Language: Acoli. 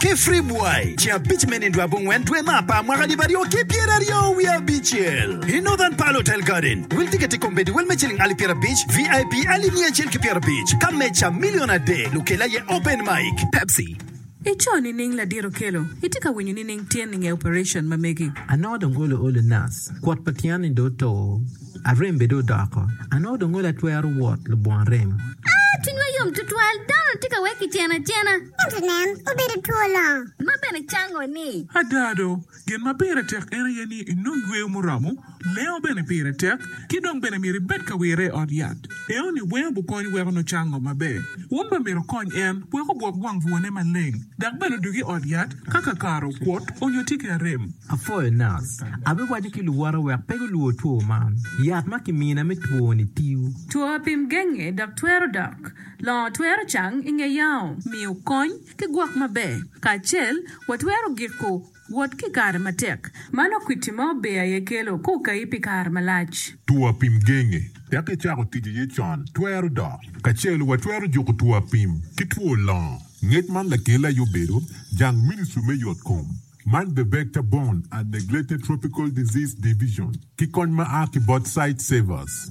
ki Freebway ci abic me nindo abongwen dwe me apar mwaka alip aryo ki pyeraryo wiye abicel i Northern Pearl Hotel Garden. Wil tiket i kombeddi wel me ciling alip pyerabic, VIP alip miya acel ki pyerabic, ka meja milion adek. Lukele aye Open Mic. Pepsi. Ico nining ladit okelo? Itye ka winyo nining tyen inge operation ma megi? Anongo dong olo olo nas. Kwot pa tyen ni do to. Arembi dong odoko. Anongo dong olo atwero wot lubongo arem. Aa! Cwinywa yom tutwal. Dano-ni tye ka wek kiceno acena. Ento nen, obedo two longo. Ma bene cango ni. Ada do, gin ma pire tek en aye ni inong yweyo muromo, lengo bene pire tek, ki dong bene myero ibed ka wire i ot yat. Eno-ni weng obukony weko nocang ngo maber. Wun bene myero wukonye en wek ogwok wang bwone maleng. Dok bene odok i ot yat ka kakare okwot onyo tye ki arem. Apwoyo nac. Abiwaco ki luwota wek pe gulwor two man. Yat ma kimina me two ni tiyo. Two pim genge dok twero dok. Longo twero cang inge yao. Miyo kony ki gwok maber kacel watwero giko. Wot ki i kare matek. Man okwitti ma ober aye kelo ka okayi pi kare malac. Two apim genge teka icako tic iye con twero dok. Kacel watwero juko two apim ki two longo. Ngec man lakelli aye obedo jang Ministry me yot kom man The Vector Borne and Neglected Tropical Disease Division ki kony ma a ki bot Sightsavers.